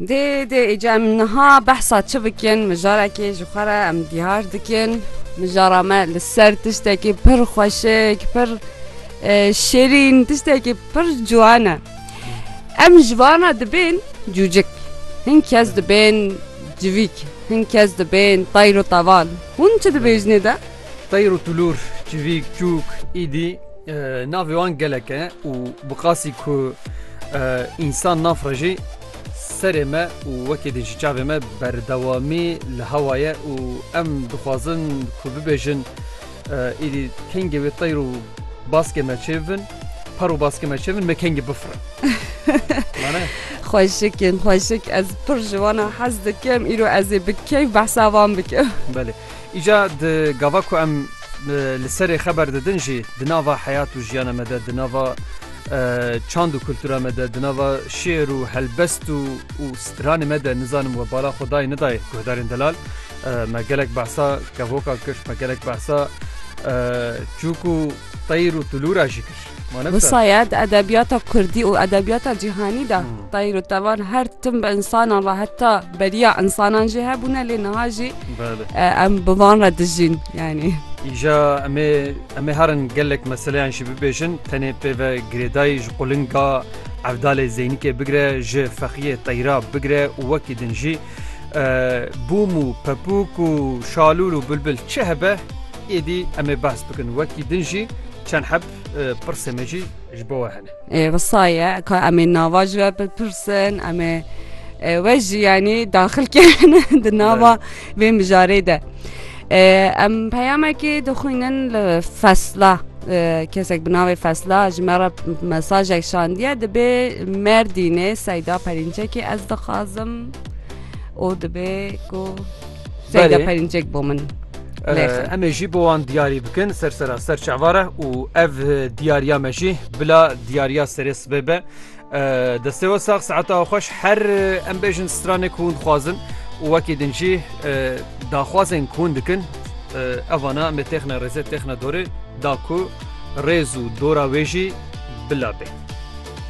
Dê dê îca em niha behsa çi bikin mijarekê ji xwe re em diyar dikin. Mijara me li ser tiştekî pir xweşik pir şêrîn tiştekî pir ciwan e. Em ji vana dibên cûcik hin kes dibên civîk hin kes dibên tayr û teval. Hûn çi dibêjinê de? Teyr û tulûr, çivîk, çûk, îdî navê wan gelek e û bi qasî ku însan nafrejî serê me û wekî din ji çavê me berdewamî li hewa ye û em dixwazin ku bibêjin îdî kengê wê teyr û baskê me çê bibin par û baskê me çê bibin me kengê bifirin. Xweşikên xweşik ez pir ji wan hez dikim îro ez ê bi keyf behsa wan bikim. Îca di gava ku em li serê xeber didin jî di nava heyat û jiyana me de di nava çand û kultura me de di nava şêr û helbest û û stranê me de nizanim we bala xwe dayê nedayê guhdarên delal me gelek behsa kevokan kir me gelek behsa çûk û Tayîr û Tulû ra jî kir. Wisaye di edebiyata kurdî û edebiyata cîhanî de tayîr û tevan her tim bi insanan re heta beriya insanan jî hebûne lê niha jî em bi van re dijîn yanî. Îja em ê em ê herin gelek meseleyan jî bibêjin tenê pê ve girêdayî ji qulinga Evdalê Zeynikê bigire ji fexiyê tayîra bigire û wekî din jî bûm û pepûk û şalûl û bilbil çi hebe Êdî em ê behs bikin wekî din jî çend heb pirsên me jî ji bo we hene. Wisa ye ka em ê nava ji we bipirsin em ê we jî yanî daxil kirin di nava vê mijarê de. Em peyamekî dixwînin li fesla kesek bi navê fesla ji me re mesajek şandiye dibê merdînê seyda perînçekî ez dixwazim û dibê ku Seyda Belê. Perinçek bo min. Lêxin. Em ê jî bo wan diyarî bikin ser sera ser çavare û ev diyariya me jî bila diyariya serê sibê be. Destê we sax saeta xweş her em bêjin stranê ku hûn dixwazin û wekî din jî daxwazên ku hûn dikin evana me têxne rêzê têxne dorê da ku rêz û dora wê jî bila bê.